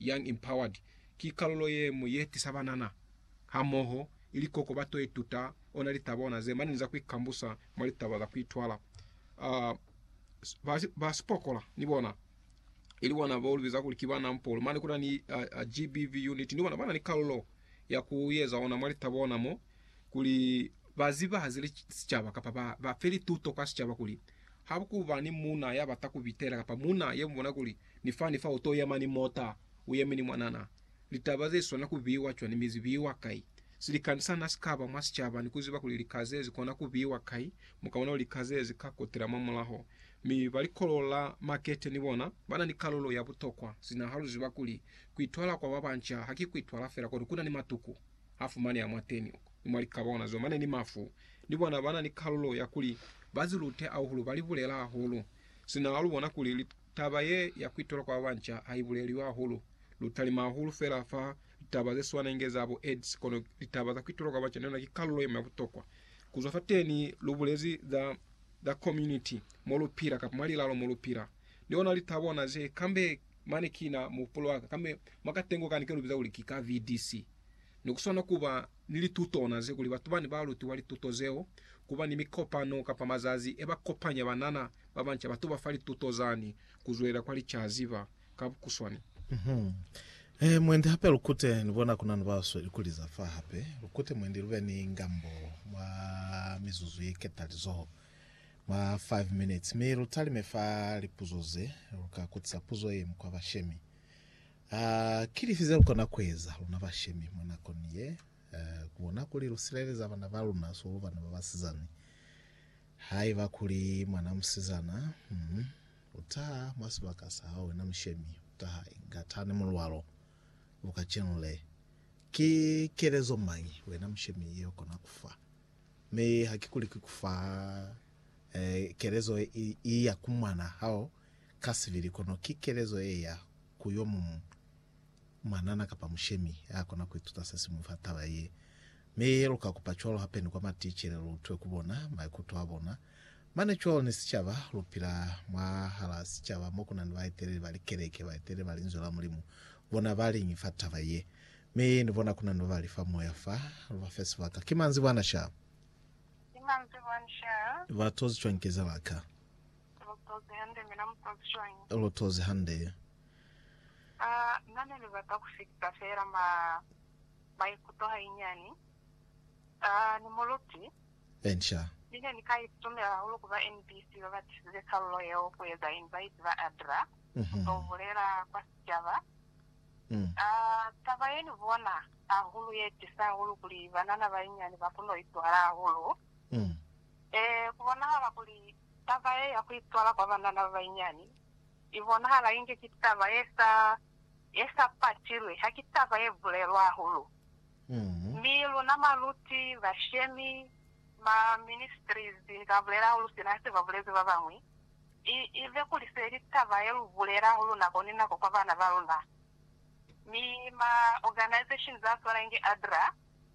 Young Empowered ki kalulo ye ñwi ye tisa banana hamoho ili koko ba to ituta ona litaba bona ze mani ni za ku ikambusa mwa litaba za ku itwala. Uh, ba, ba sipokola ni bona ili bona bo libiza kuli ki ba nampolo mane kuna ni uh, uh, GBV unit ni bona bana ni kalulo ya ku yeza ona mwa litaba bona mo kuli ba zibahaze li sicaba kapa ba, ba fe lituto kwa sicaba kuli ha ku ba ni muna ya bata ku bitela kapa muna ye mubona kuli Ni fani fa uto yema ni mota, uyeme ni mwanana. Litaba ze swana kubiwa cwani mi zibiwa kai? Silikani sana sikaba mwa sicaba ni kuziba kuli lika ze zikona kubiwa kai, mukaona kuli lika ze zika kotela mwa mulaho. Mi ba likolo la makete ni bona bana ni kalulo ya butokwa, sina ha luziba kuli kuitwala kwa babanca haki kuitwala fela kono kuna ni matuku a fumaneha mwateni uko, ni mwa likaba ona zo mane ni mafu. Ni bona bana ni kalulo ya kuli ba zilute ahulu, ba libulela hahulu, sina ha lubona kuli Taba ye ya kuitola kwa babanca ha ibuleliwi hahulu. Lu talima hahulu fela fa litaba ze swana inge za bo AIDS, kono litaba za kuitola kwa banca ni yona ki kalulo ye ñwi ya butokwa. Ku zwa fateni, lu bulezi za, za community, mo lu pila, kapa mwa lilalo mo lu pila. Ni ona li ta bona ze, kambe mane kina muhupulo wa ka, kambe mwa katengo kani ke lu biza kuli ki ka VDC. Ne ku swana ku ba ni litutona ze kuli batu ba ne ba lutiwa lituto zeo, ku ba ni mikopano kapa mazazi e ba kopanya banana ba banca ba tuba fa lituto zani ku zwelela kwa licaziba. Ka bukuswani. He mwendi hape lu kute, ni bona ku na ni ba sweli ku liza fa hape. Lu kute mwendi lu be ni ngambo mwa mizuzu ye ketalizoho, mwa five minutes, mi lu talime fa lipuzo ze lu ka kutisa puzo ye mukwa bashemi. A Ki lifi zelukona kueza, luna bashemi, mwa nakoni ye? A Ku bona kuli lusileleza bana baluna swalo, bana babasizani. Haiba kuli mwana musizana mm utaha mwa sibaka sahae, wena mushemi, utaha inga tani mulwalo, luka cinle. Ki kelezo mañi, wena mushemi, yeukona kufa? Mi hakikuli ki kufa, eh, kelezo iya ku mwana hao Kasibili, kono ki kelezo ye ya ku yo muñwi mwanana kapa mushemi ya kona ku ituta se si mu fa taba ye. Mi ye lu ka kupa cwalo hape ni kwa maticele lu utwe ku bona maikuto a bona. Mane cwalo ni sicaba, lu pila mwahalaa sicaba mo ku na ni baeteleli ba likeleke, baeteleli ba Linzwi la Mulimu. Bona ba liñi fa taba ye? Mi ni bona ku na ni ba ba li fa moya fa, lu ba fe sibaka. Ki manzibwana sha? Ki manzibwana sha? Ba tozi cwañi kezela ka? Lotozi hande, mina mutozi cwañi? Lotozi hande. A na ne libata ku fita fela ma, maikuto hainyani. A ni muluti. Enca. Ni ne ni ka itumela hahulu ku ba NBC ba ba tisize kalulo yeo ku eza invite ba Adra ku to bulela kwa sicaba. A taba ye ni bona hahulu ye tisa hahulu kuli banana bainyani ba kono ituhala hahulu. Ee, ku bonahala kuli Taba ye ya ku itwala kwa banana ba banyinyani i bonahala inge ki taba ye sa, ye sa patilwi, ha ki taba ye bulelwa hahulu. Mi luna baluti, bashemi, ba ministries, ni ka bulela hahulu sina se ba bulezi ba bañwi, i, i be kuli se li taba ye lu bulela hahulu nako ni nako kwa bana ba luna. Mi ma organizations a swana inge ADRA,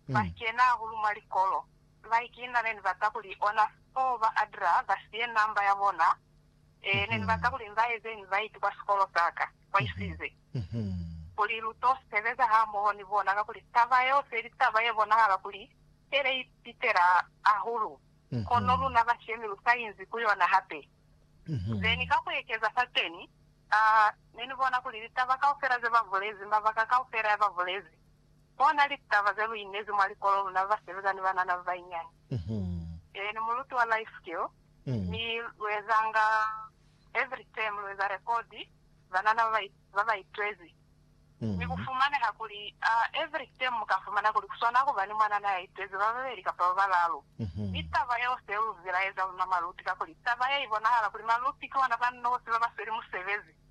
ba kena hahulu mwa likolo. Like, Na neni bata kuli ona four ba Adra ba siye number ya bona. Ee, neni bata kuli nza eze invite kwa sikolo saka. Kwaisize. Kuli lu to sebeza hamoho ni bona kakuli taba yeo se ili taba ye bonahala kuli ele i pitela hahulu. Kono luna bashemi lu sa inzi ku yona hape. Zeni ka ku ekeza fateni, aa, neni bona kuli litaba kaufela ze ba bulezi, mabaka kaufela ya ba bulezi, Bona litaba ze lu inezi mwa likolo luna basebeza ni banana ba banyinyani. Ee, ni muluti wa Life Skill, mi lu ezanga every term, lu eza rekodi banana ba ba itwezi. Mi ku fumaneha kuli every term mu ka fumana kuli ku swana ku ba ni mwanana ya itwezi ba babeli kapa ba balaalu. Mi taba yeo se lu zilaeza luna maluti, kakuli taba ye i bonahala kuli maluti ki ona ba nosi ba ba sweli musebezi.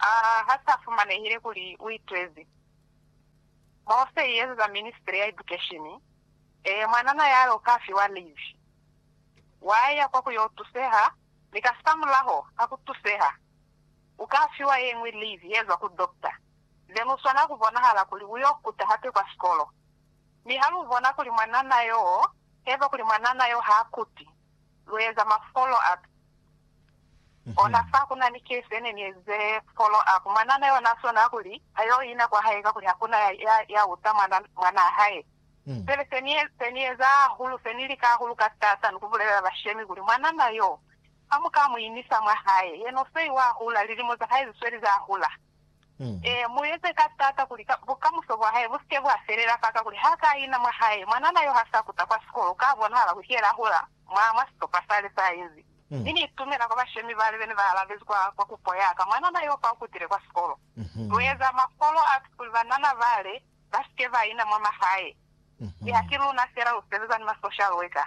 A ha sa fumanehile kuli u itezi. Mose i ezeza ministry ya edukeshini, ee, mwanana ya lo ka fiwa livi. Wa ya kwa ku yo tuseha, mi kasamulaho ka ku tuseha, u ka fiwa ye ñwi livi ye zwa ku dokta, then u swana ku bonahala kuli u yo kuta hape kwa sikolo. Mi ha lu bona kuli mwanana yo, heba kuli mwanana yo ha kuti. lu eza ma follow up ona fa kuna ni case yene ni eze follow up mwanana yona sona kuli ayo ina kwa hae kakuli hakuna ya ya ya uta mwana mwanaa hae pele se ni se ni eza hahulu se ni lika hahulu ka stata ni ku bulelela bashemi kuli mwanana yo hamuka mu inisa mwa hae yena usei wa hula lilimo za hae zisweli za hula Ee, mu eze ka taata kuli bukamuso bwa hae bu si ke bwa felela faka, kuli ha ka ina mwa hae. Mwanana yo ha sa kuta kwa sikolo, ka bonahala kuli ki yena a hula mwa, mwa sicopa sale sa inzi. Mi ni itumela kwa bashemi bale be ne ba alabezi kwa, kwa kupo ya ka, Mwanana yo fa u kutile kwa sikolo. Lu eza ma follow ups kuli banana bale ba si ke ba ina mwa mahae. Mi ha ki luna fela lu sebeza ni ma social worker.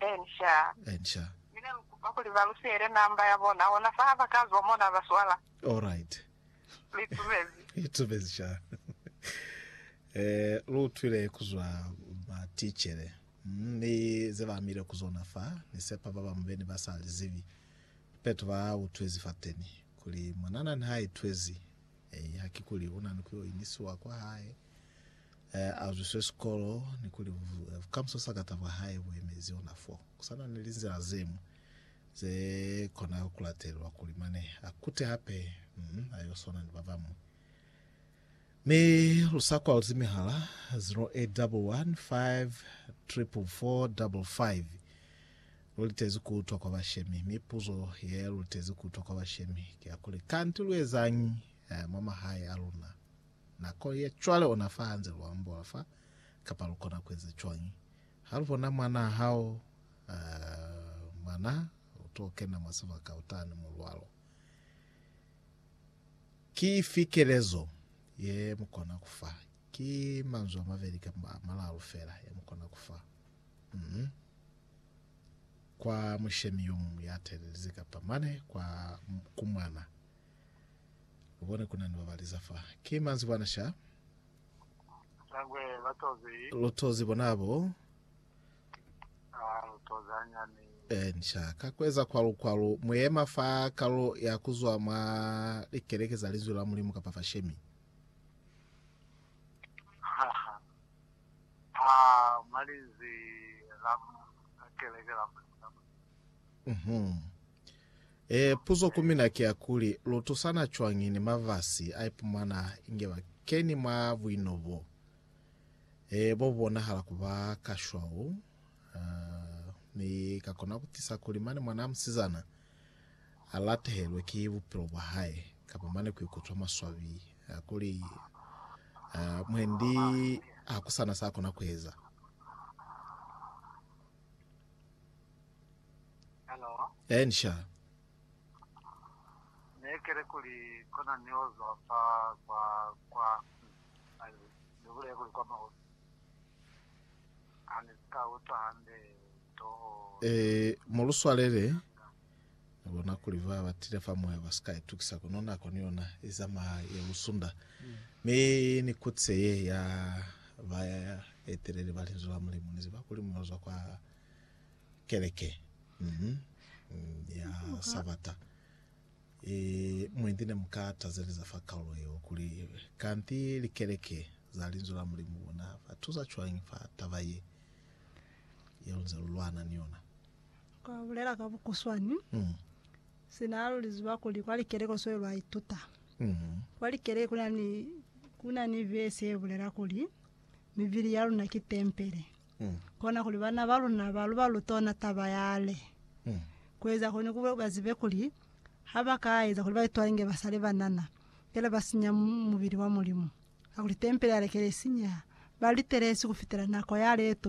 Ensha. Ensha. Mi ne lu kupa kuli ba lu siele namba ya bona, hona fa ha ba ka zwa mo na ba swala. Alright. Lu itumezi? Itumezi sha. Eh, lu utwile ku zwa ba ticele, ni ze ba amile ku zona fa. Ni sepa ba bamu be ni ba sa li zibi peto ba utwezi fateni kuli mwanana ni ha itwezi. Eh, ha ki kuli una ni ku yo inisiwa kwa hae. e azwiswe sikolo ni kuli bukamuso sa kata bwa hae bu emezi ona fo. Ku sa na ni linzila ze ñwi ze kona ku latelelwa kuli mane a kute hape mm, a yo swana ni ba bañwi. Mi lu sa kwalzi mihala 0811 544555 lu litezi ku utwa kwa bashemi, mi puzo ye lu litezi ku utwa kwa bashemi ki ya kuli, Kanti lu ezañi mwa mahae a luna? Nakong ya cwale ona fa hanze lu ambola fa, kapa lu kona ku eza cwañi? Ha lu bona mwanaa hao, uh, mwana, u t'o kena mwa sibaka utani mulwalo. Ki ifi kelezo ye mu kona ku fa? Ki manzwi a mabeli kamba a malalu fela ye mu kona ku fa. Mm -hmm. Kwa mushemi yo muñwi ya telelize, kapa mane kwa, ku mwana. Ubone kuna ni babali za fa. Ki manzwi bwana sha. Shangwe batozi. Lutozi bona abo. Ah, lutozi anyani. Ensha ka kweza kwalu kwalu muyema fa kalo ya kuzwa mwa likeleke za linzwi la Mulimu kapa fa shemi. Ah, malinzi la keleke la. Mhm. Ee, puzo ku mina ki ya kuli, lu tusana cwañi ni mafasi a ipumana inge ba keni mwa buino bo, ee, bo bu bonahala ku ba ka shwau? Uh, mi ka kona ku tisa kuli mane mwana a musizana a latehelwe ki bupilo bwa hae, kapa mane ku ikutwa maswabi a kuli, uh, mwendi hakusana sa kona ku eza. Hello. Eh, ni sha. Ne kere kuli kona ni ozwa fa kwa kwa ni bule kuli kwa mahosi. Ani ka utwa hande toho. Eh, moluswalele bona kuli ba batile fa moya ba sika itukisa kono nako ni yona izama ya lusunda mi ni kutse ye ya ba etelele ba linzwi la mulimu ni ziba kuli munozwa kwa Keleke mhm, ya Sabata e, mwendi ne mu ka tazeleza fa kaulo yeo kuli, Kanti likeleke za Linzwi la Mulimu lu na fa tusa cwañi fa taba ye, ye lu nze lu lwana ni yona? Kwa bulela ka bukuswani, Mm, sina lu li ziba kuli kwa likeleke lu sweli lwa ituta. mhm, Kwa likeleke ku na ni, ku na ni vesi ye bulela kuli, Mibili ya luna ki tempele. Kona kuli bana ba luna ba luba lutona taba yale. Kueza kuli kube ba zibe kuli ha ba ka eza kuli ba itwale nge ba sale banana, fela ba sinya mubili wa Mulimu. Kakuli tempele yale kele sinyeha, ba litelesi kufitela nako yale ye tuma.